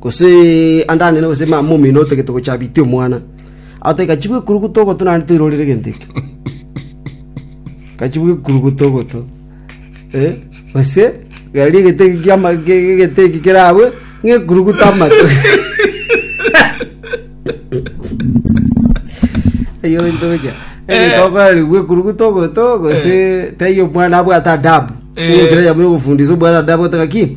gose ande anene, gose mama omino otagete gocha abitie omwana. Agote gachi bw'ekuruguto ogoto naende toirorire egento ekio. Gachi bw'ekuruguto ogoto. Eh, gose gari egete eki kiama ge- egete eki kerabwe ng'ekuruguto amato. Eyo ntoja. Eh. Tokari bw'ekuruguto ogoto gose taiyo omwana abwate adabu. Eh. Ogochira yamo ogofundisa omwana adabu otaka ki?